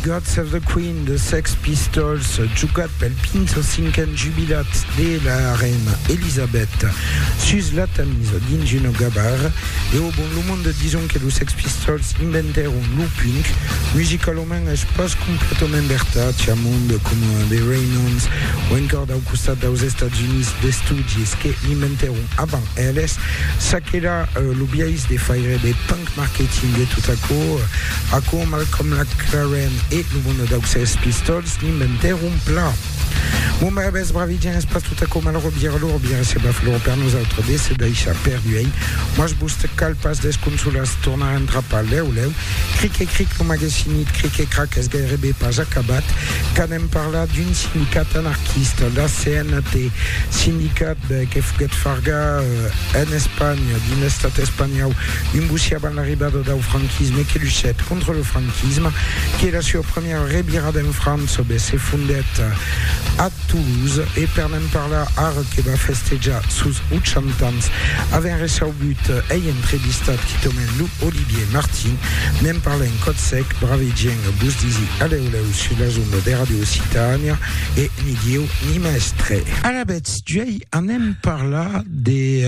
Guts of the Queen de Sex Pistols, jogat pel 25n jubilat de la reina Elisabèth sus la Tamise dins una gabar. E au bon, lo monde dison que los Sex Pistols inventèron lo punk. Musicalament es pas completament vertat, i a monde coma The Ramones o encòr dau costat daus Estats Units d'estudis que l'inventèron avant Eles, ça qu'èra lo biais de faire de punk marketing e tot aquò, aquò Malcolm McLaren e lo mono dau Sex Pistols n'inventèron plan. Bon brabes, bravidien es pas tot aquò malrò vier lor vier se va flor per nosautres de se daishar per duein, mas vos cal pas desconsolar-se tornar entrapar lèu lèu, cric e cric lo magasinit cric e crac es gairebe pas acabat, Vam parlar d'un sindicat anarquista, la CNT, sindicat que foguèt fargar en Espanha, dins l'Estat espanhòu, un bocí avant l'arribada dau franquisme e que luchèt contra lo franquisme, que la sua premiera revirada en França be se fondèt a Toulouse e per ne'n parlar ara que va festejar sos 80 ans avèm recegut ei entrevistat quitament lo Olivier Martin, Ne'n parlem còth sec, brave gent, vos disi alèu lèu sus las ondas de Ràdio Occitània, e ni Dieu ni mèstre. Alavetz d'uèi anem parlar de,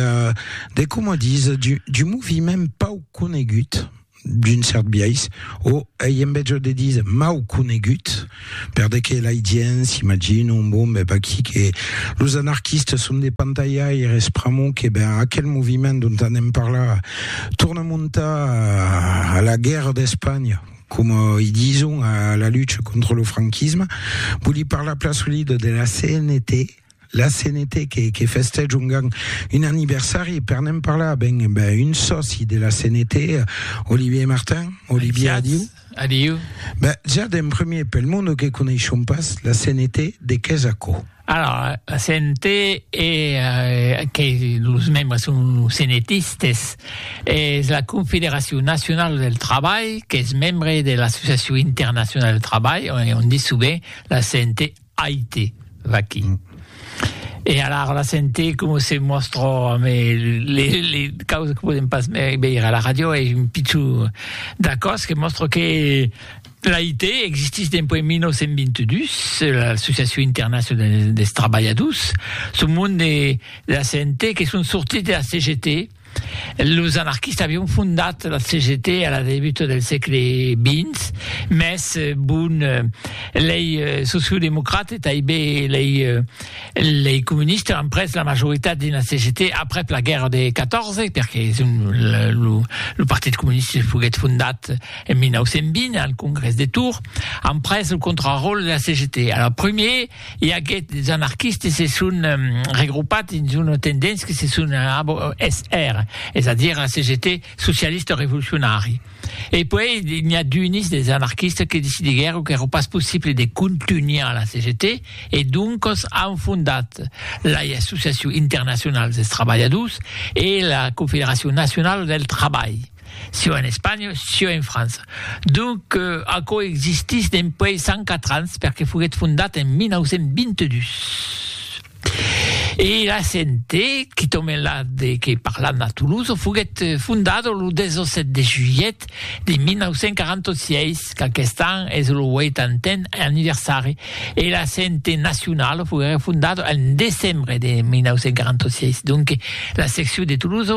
de coma dis, d'un moviment pauc conegut, d'un cèrt biais, o ei en betjor de díser mau conegut, Per de que l'ai dien, s'imagina un bon bèb aquí que los anarquistes son de pantaiaires pr'amor que ben aquel moviment dont anem parlar torna montar a la guèrra d'Espanha, coma i dison a la lucha contra lo franquisme, voli parlar plan solida de la CNT, la CNT que, que festège un, un aniversari, per n'en parlar, ben, ben un sòci de la CNT, Olivier Martin, Olivier Adiu. Adiu. Ben, ja d'en premier, pel monde que coneishon pas, la CNT de què és aquò? Alors, la CNT e eh, que los membres son CNTistes, és la Confederació Nacional del Treball, que és membre de l'Associació Internacional del Treball, on, on dit sovint la CNT Aite, vaquí. E alara la sente coma se mòstra amé le le causes que podem pas veire a la ràdio e un pichon d'acòs que mòstra que l'Aite existís dempuèi 1922, l'Associacion Internacional des Trabalhadors, son monde de la sente que son sortits de la CGT, Los anarquistas avián fondat la CGT a la debuta del sègle xx, mès bon, lei sociodemocrates e tanben lei comunistas an pres la majoritat dins la CGT aprèp la guèrra de 14, perque lo Partit Comunista foguèt fondat en 1920 al Congrès de Tours, an pres lo contraròtle de la CGT. Alara, primièr, I aguèt des anarquistes se son regroupat dins una tendéncia que se son ABO-SR, es a dire la CGT socialista revolucionari. E puèi n'i a d'unis des anarquistes que decidiguèron qu'èra pas possible de contunhar la CGT e doncas an fondat la Associacion Internacional dels Trabalhadors e la Confederacion Nacionala del Trabalh. sieu en Espanha, sieu en França. Donc, aquò existís dempuèi 104 ans, perque foguèt fondat en 1922. E la CNT, qui tombe la de que parlam a Toulouse, foguèt fondada lo 17 de julhet de 1946, qu'aquest an es lo 80n anniversari, e la CNT nacionala foguèt fondada en decembre de 1946. Donc, la seccion de Toulouse,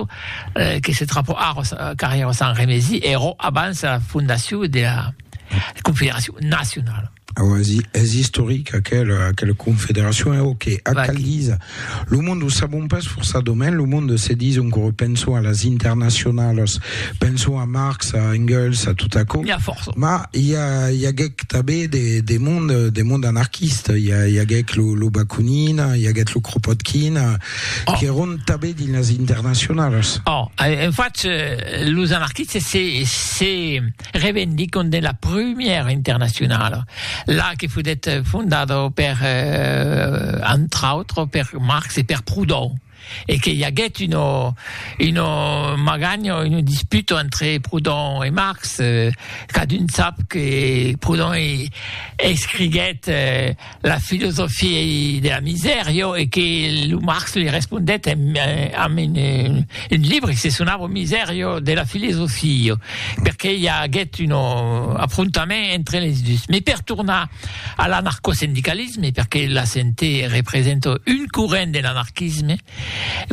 que se trapò ara carrièra Sant Remesi, ero abans la fondacion de la Confederacion Nacionala. Aua, es istoric aquela, aquela confederacion, e ok, ac Vaquí. cal díser. Lo monde, o sabon pas forçadament, lo monde se dison que penson a las internacionalas, penson a Marx, a Engels, a tot aquò, N'hi a fòrça. mas i, a, i aguèc tanben de, de monde, de monde anarquista, i, a, i aguèc lo, lo Bakunin, i aguèt lo Kropotkin, Oh. Qu'èron tanben dins las internacionalas. Oh, en fach, los anarquistes se, se revendicon de la prumèra internacionala, la que fodet fondada per, eh, entre autres, per Marx e per Proudhon, e que i aguèt una, una maganha, una disputa entre Proudhon e Marx, eh, cadun sap que Proudhon escriguèt, eh, la filosofia de la misèr, jo, e que lo Marx li respondèt en, amb un, un libre que se sonava Misèr, jo, de la filosofia, jo, perqué i aguèt un afrontament entre les dus. Mes per tornar a l'anarcosindicalisme, perqué la CNT representa un corrent de l'anarquisme,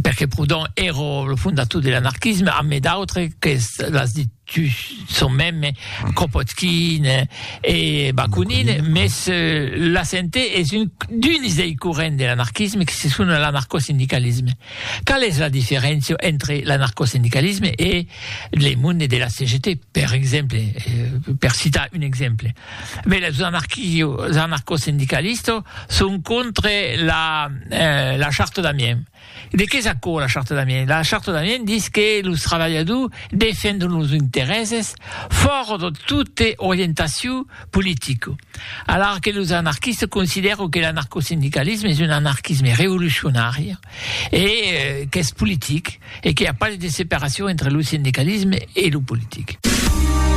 perqué Proudhon èra lo fondator de l'anarquisme, amb d'autres qu'es, l'as dit, Tu son mème Kropotkin e Bakunin, mès la sente es un d'uns dei corrents de l'anarquisme que se sona l'anarcosindicalisme. Qual es la diferéncia entre l'anarcosindicalisme e le monde de la CGT, per exemple, per citar un exemple? Bè, los anarquio, anarcosindicalistos son contre la, la Charte d'Amiens. De qué es aquò la Charte d'Amiens? La Charte d'Amiens dis que los trabalhadors defendon los interèses fòra de tote orientacion politica, alara que los anarquistes considèron que l'anarcosindicalisme es un anarquisme revolucionari e qu'es politic e que i a pas de separacion entre lo sindicalisme e lo politic.